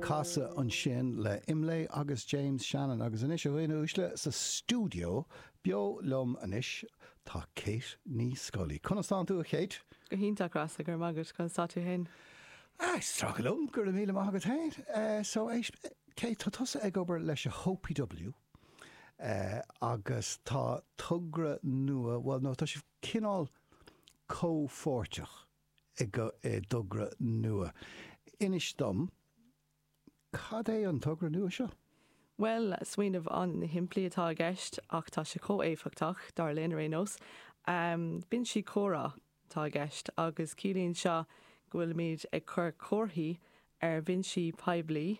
Casadh ansin le Imlé agus James Shannon agus anois, a dhaoine uaisle, sa stiúideo, beo liom anois, tá Kate Ní Scolaí. Conas tánn tú, a Kate? Go hiontach, Rossa, go raibh maith agat. Conas tá tú féin? Ah, is trua liom, go raibh míle maith agat féin. So, Kate, tá tusa ag obair leis a hOPW agus tá togra nua, bhuel, no, tá sibh cineál comhpháirteach, i dtogra nua. Inis dom, cad é an togra nua seo? Bhuel, smaoineamh an-shimplí atá i gceist ach tá sé chomh éifeachtach, dar linn ar aon nós. Binsí comhrá atá i gceist agus ciallaíonn seo go bhfuilimid ag cur comharthaí ar bhinsí poiblí,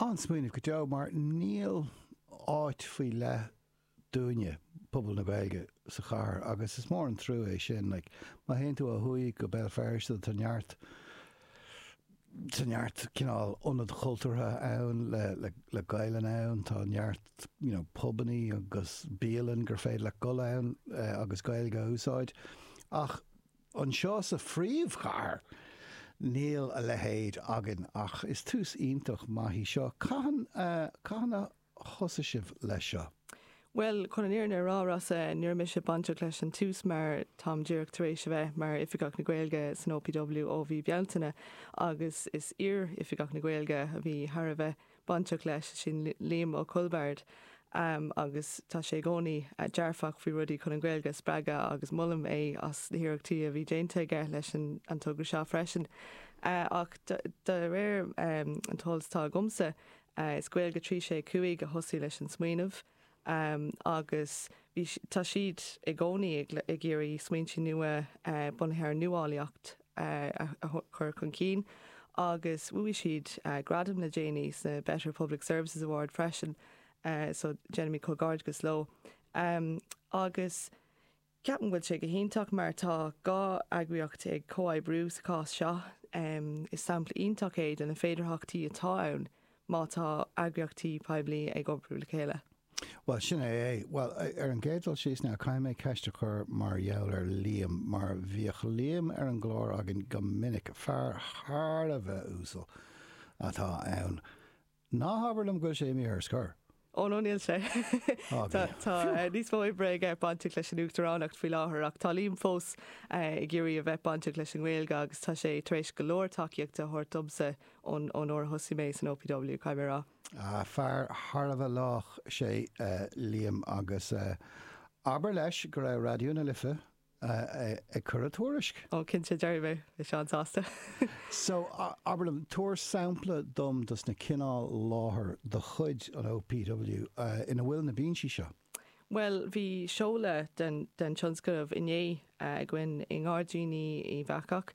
An-smaoineamh go deo mar níl áit faoi leith dúinne, pobal na Gaeilge, sa chathair agus is mór an truagh é sin. Like, má théann tú ó thuaidh go Béal Feirste tá neart, tá neart cineál ionad chultúrtha ann le, le, le Gaelainn ann, tá neart, you know, pubannaí agus bialann gur féidir leat dul ann agus Gaeilge a úsáid ach Anseo sa phríomhchathair, níl a leithéid againn, ach is tús iontach maith í seo. Cathain, cathain a thosaigh sibh leis seo? Bhuel, chun an fhírinne a rá, Rossa, ní raibh mise bainteach leis an tús mar táim díreach tar éis a bheith mar Oifigeach na Gaeilge san OPW ó mhí Bealtaine agus is iar-Oifigeach na Gaeilge a bhí thar a bheith bainteach leis, sin Liam Ó Coilbhard agus tá sé i gcónaí dearfach faoi rudaí chun an Ghaeilge a spreagadh agus molaim é as na hiarrachtaí a bhí déanta aige leis an togra seo freisin. Ach de réir an t-eolas atá agamsa, is Gaeilge 365 a thosaigh leis an smaoineamh. agus bhí, tá siad i gcónaí ag iarraidh smaointe nua bunaithe ar nuálaíocht a chur chun cinn agus bhuaigh siad gradam le déanaí sna Better Public Services Awards freisin so déanaimid comhghairdeachas leo. Agus. Ceapaim go bhfuil sé go hiontach mar tá dhá eagraíocht ag comhoibriú sa chás seo. Is sampla iontach é de na féidearthachtaí atá ann má tá eagraíochtaí poiblí ag oibriú le chéile. Bhuel, sin é é. Bhuel, ar an gcéad dul síos now, caithfidh mé ceist a chur mar gheall ar Liam, mar bhíodh Liam ar an gclár againn go minic, fear thar a bheith uasal atá ann. Ná habair liom go bhfuil sé imithe ar scor? Ó no, níl sé. Tá níos mó oibre aige bainteach leis an Uachtaránacht faoi láthair ach tá Liam fós ag iarraidh a bheith bainteach leis an nGaeilge agus tá sé tar éis go leor tacaíochta a thabhairt domsa ón uair a thosaigh mé san OPW, caithfidh mé a rá. Fear thar a bheith lách é Liam agus abair leis go raibh Raidió na Life a ag cur a tuairisc. Ó, cinnte, déarfaidh mé. Bhí sé an-sásta. So, abair liom, tabhair sampla dom dos na cineál láthair de chuid an OPW ina bhfuil na binsí seo. Bhuel, bhí seoladh den tionscnamh inné againn i nGairdíní Uíbh Eachach.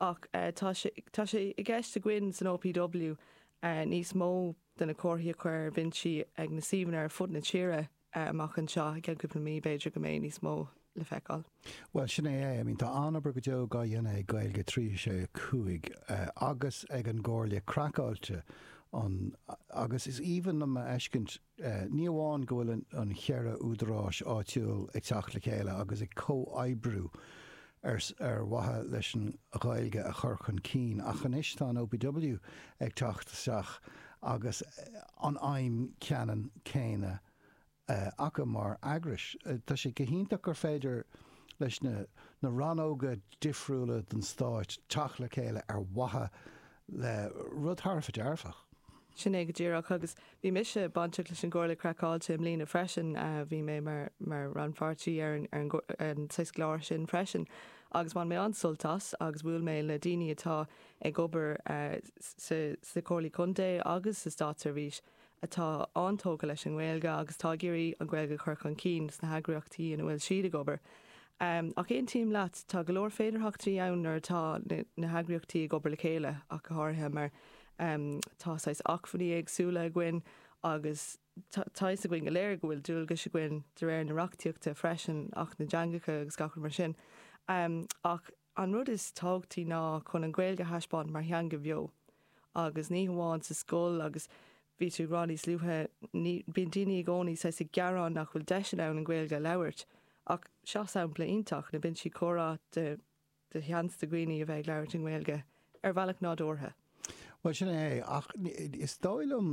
Ach tá sé tá sé i gceist againn san OPW níos mó de na comharthaí a chur ar bhinsí ag na suíomhanna ar fud na tíre amach anseo. I gceann cúpla mí b'fhéidir go mbeidh níos mó le feiceáil. Bhuel, sin é é. I mean, tá an-obair go deo dhá dhéanamh ag Gaeilge 365 agus ag an gComhairle Craiceáilte, agus is aoibhinn liom a fheiscint, Ní amháin go bhfuil na ceithre údaráis áitiúil ag teacht le chéile agus ag comhoibriú ar mhaithe leis an Ghaeilge a chur chun cinn, ach anois tá an OPW ag teacht isteach agus an aidhm cheannann céanna acu mar eagrais. Tá sé go hiontach gur féidir leis na rannóga difriúla den stát teacht le chéile ar mhaithe le rud thar a bheith dearfach. Sin é go díreach. Agus bhí mise bainteach leis an gComhairle Craiceáilte i mbliana freisin, bhí mé mar rannpháirtí ar an saghas, ar an gclár sin freisin agus bhain mé an-sult as agus bhuail mé le daoine atá ag obair sna Comhairlí Contae agus sa Státseirbhís atá an-tógtha leis an nGaeilge agus atá ag iarraidh an Ghaeilge a chur chun cinn sna heagraíochtaí ina bhfuil siad ag obair. Ach aontaím leat, tá go leor féidearthachtaí ann nuair atá na heagraíochtaí ag obair le chéile ach go háirithe mar tá saghas acmhainní éagsúla againn agus tá fhios againn go léir go bhfuil dualgas againn de réir na reachtaíochta freisin, Acht na dTeangacha agus gach rud mar sin, ach. An rud is tábhachtaí ná chun an Ghaeilge a thaispeáint mar theanga bheo, agus ní hamháin sa scoil, agus bhí tú ag rá níos luaithe, ní, bíonn daoine i gcónaí saghas ag gearán nach bhfuil deiseanna ann an Ghaeilge a labhairt, ach seo sampla iontach, na binsí comhrá, de, de sheans do dhaoine a bheith ag labhairt i nGaeilge ar bhealach nádúrtha. Bhuel, sin é, ach is dóigh liom.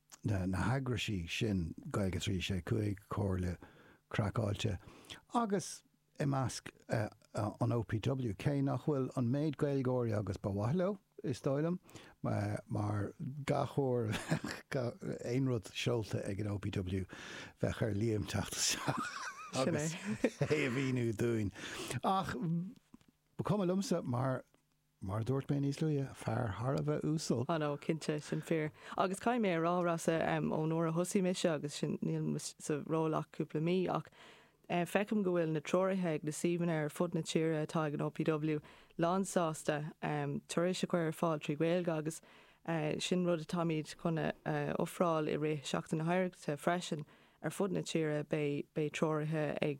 na heagraisí sin, Gaeilge 365, Comhairle Craiceáilte, agus i measc an OPW, cé nach bhfuil an méid Gaeilgeoirí agus ba mhaith leo, is dóigh liom, mar gach uair a bheadh aon rud seolta ag an OPW, bheadh ar Liam teacht isteach agus é a mhíniú dúinn. Ach ba cuma liomsa mar. Mar a dúirt mé níos luaithe, fear thar a bheith uasal. á no, cinnte, sin fíor. Agus caithfidh mé a rá, Rossa, ón uair a thosaigh mise, agus sin, níl mise sa ról ach cúpla mí, ach feicim go bhfuil na treoraithe ag na suíomhanna ar fud na tíre atá ag an OPW lánsásta turais a chur ar fáil trí Ghaeilge agus sin rud atáimid chun a ofráil i rith Sheachtain na hOidhreachta freisin. Ar fud na tíre beidh treoraithe ag.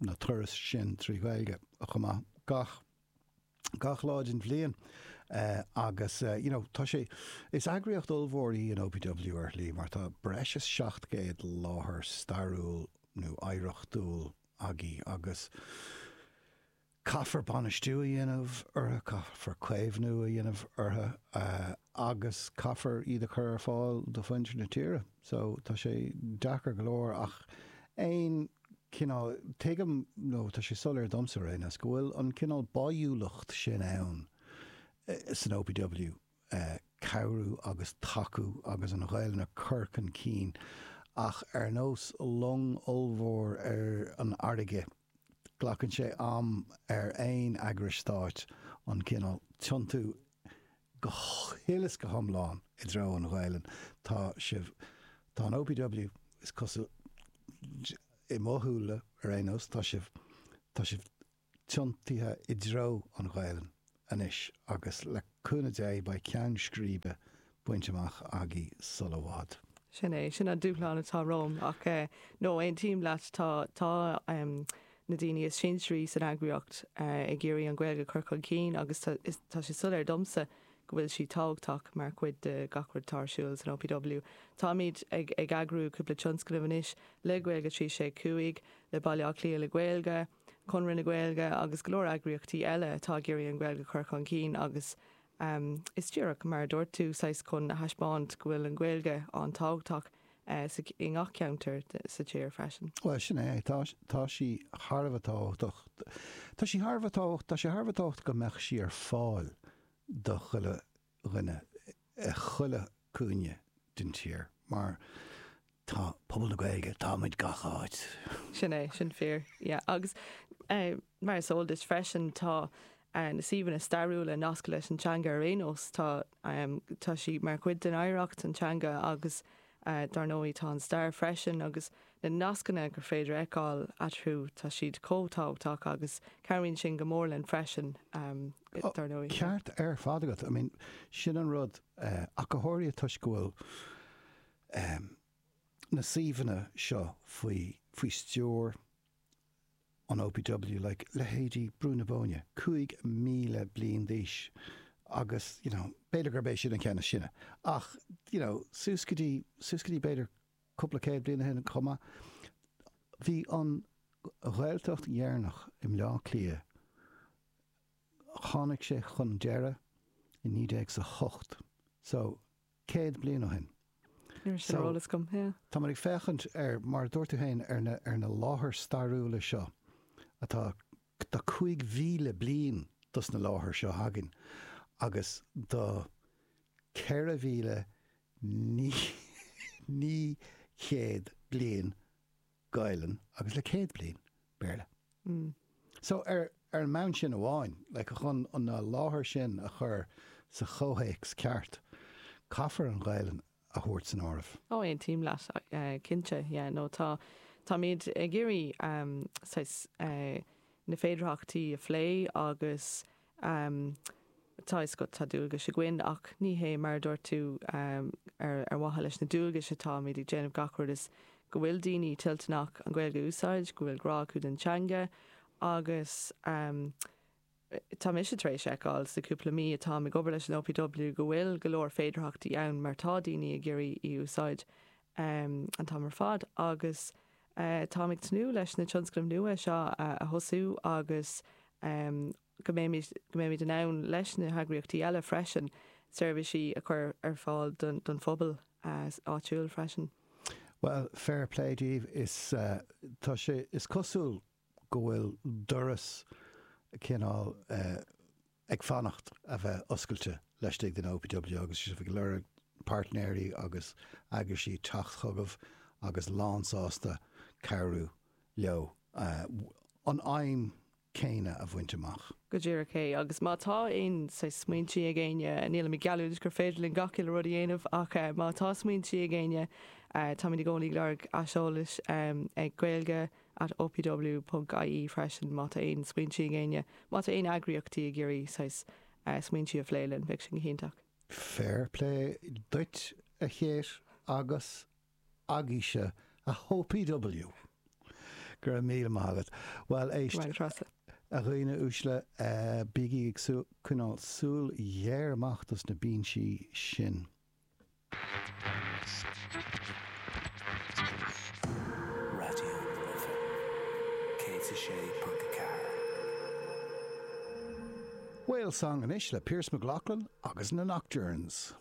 na turais sin trí Ghaeilge chomh maith gach gach lá den bhliain agus you know tá sé is eagraíocht ollmhór í an OPW ar shlí mar tá breis is 700 láthair stairiúil nó oidhreachtúil agaibh agus caithfear bainistiú a dhéanamh orthu caithfear caomhnú a dhéanamh orthu agus caithfear iad a chur ar fáil do mhuintir na tíre so tá sé deacair go leor ach aon cineál, tuigim nó tá sé soiléir domsa ar aon nós, go bhfuil an cineál báidhiúlacht sin ann san OPW, cabhrú agus tacú agus an Ghaelainn a chur chun cinn ach ar nós long ollmhór ar an fharraige, glacann sé am ar aon eagrais stáit an cineál tiontú go huile is go hiomlán i dtreo an Ghaelainn. Tá sibh, tá an OPW, is cosúil, i mo shúile ar aon nós, tá sibh, tá sibh tiontaithe i dtreo an Ghaelainn anois agus le cúnamh Dé beidh ceann scríbe bainte amach agaibh sul i bhfad. Sin é. Sin an dúshlán atá romham. Ach eh no, aontaím leat, tá, tá em, na daoine is sinsearaí san eagraíocht eh ag iarraidh an Ghaeilge a chur chun cinn agus tá, is, tá sé soiléir domsa go bhfuil sí tábhachtach mar chuid de gach rud atá ar siúl san OPW. Táimid ag, ag eagrú cúpla tionscnamh anois le Gaeilge 365, le Baile Átha Cliath le Gaeilge, Conradh na Gaeilge agus go leor eagraíochtaí eile atá ag iarraidh an Ghaeilge a chur chun cinn agus Am, is díreach mar a dúirt tú, saghas chun a thaispeáint go bhfuil an Ghaeilge an-tábhachtach i ngach ceantar sa tír freisin. Bhuel, sin é, tá, tá sí thar a bheith tábhachtach. Tá sí thar a bheith tábhachtach, tá sé thar a bheith tábhachtach go mbeadh sí ar fáil do chuile dhuine, chuile, cúinne den tír mar tá pobal na Gaeilge, táimid gach áit. Sin é, sin fíor. Yeah, agus mar is eol duit freisin, tá na suíomhanna stairiúla nasctha leis an teanga ar aon nós, tá tá sí mar chuid den oidhreacht, an teanga agus dar ndóigh tá an stair freisin agus Na nascanna gur féidir a fheiceáil eatarthu, tá siad chomh tábhachtach agus cabhraíonn sin go mór linn freisin, dar ndóigh. Ceart ar fad agat. I mean, sin an rud, ach háirithe toisc go bhfuil na suíomhanna seo faoi stiúir an OPW, like, leithéidí Brú na Bóinne, 5,000 bliain d'aois agus, you know, b'fhéidir gurb é sin an ceann is sine ach, you know, suas go dtí, suas go dtí b'fhéidir, Cúpla céad bliain ó shin chomh maith, bhí an Ghaeltacht dheireanach i mBleá Cliath, tháinig sé chun deiridh i naoi déag is a hocht, so céad bliain ó shin. Níl sin ar eolas agam, yeah. Táim ag féachaint ar, mar a dúirt tú féin, ar na, ar na láthair stairiúla seo atá, tá cúig mhíle bliain dos na láthair seo againn agus do ceithre mhíle naoi céad bliain Gaelainn agus le céad bliain Béarla. So, ar an mbonn sin amháin, like, chun an láthair sin a chur sa chomhthéacs ceart, caithfear an Ghaelainn a thabhairt san áireamh. Oh, aontaím leat, cinnte, yeah, no, tá, táimid ag iarraidh, saghas, na féidearthachtaí a phlé agus Tá a fhios agat, tá dualgais againn, ach ní hé, mar a dúirt tú, ar mhaithe leis na dualgais atá muid ag déanamh gach rud, ach is go bhfuil daoine toilteanach an Ghaeilge a úsáid, go bhfuil grá acu don teanga agus tá mise tar éis fheiceáil sa chúpla mí atáim ag obair leis an OPW go bhfuil go leor féidearthachtaí ann mar tá daoine ag iarraidh í a úsáid an t-am ar fad agus Táim ag tnúth leis na tionscnaimh nua seo a thosú agus go mbeimid in ann, leis na heagraíochtaí eile freisin, seirbhísí a chur ar fáil don phobal áitiúil freisin. Bhuel, fair play daoibh. Tá sé, is cosúil go bhfuil doras cineál. ag fanacht a bheith oscailte laistigh den OPW agus sibh ag lorg páirtnéirí agus eagraisí teacht chugaibh agus lánsásta cabhrú leo an aidhm céanna a bhaint amach. Go díreach é, agus má tá aon saghas smaointí ag éinne, nílimid ag geallúint gur féidir linn gach uile rud a dhéanamh ach má tá smaointí ag éinne, táimid i gcónaí ag lorg aiseolais ag gaeilge at. at opw.ie freisin má tá aon smaointí ag éinne, má tá aon eagraíochtaí ag iarraidh saghas smaointí a phlé linn, bheadh sin go hiontach. Fair play duit a Kate agus a Ghaeilge san OPW. Go raibh míle maith agat. Bhuel, a dhaoine uaisle, bígí ag coinneáil súil ghéar amach dos na binsí sin. Raidió na Life 106.4. Whale Song anois le Pearse McGloughlin agus na Nocturnes.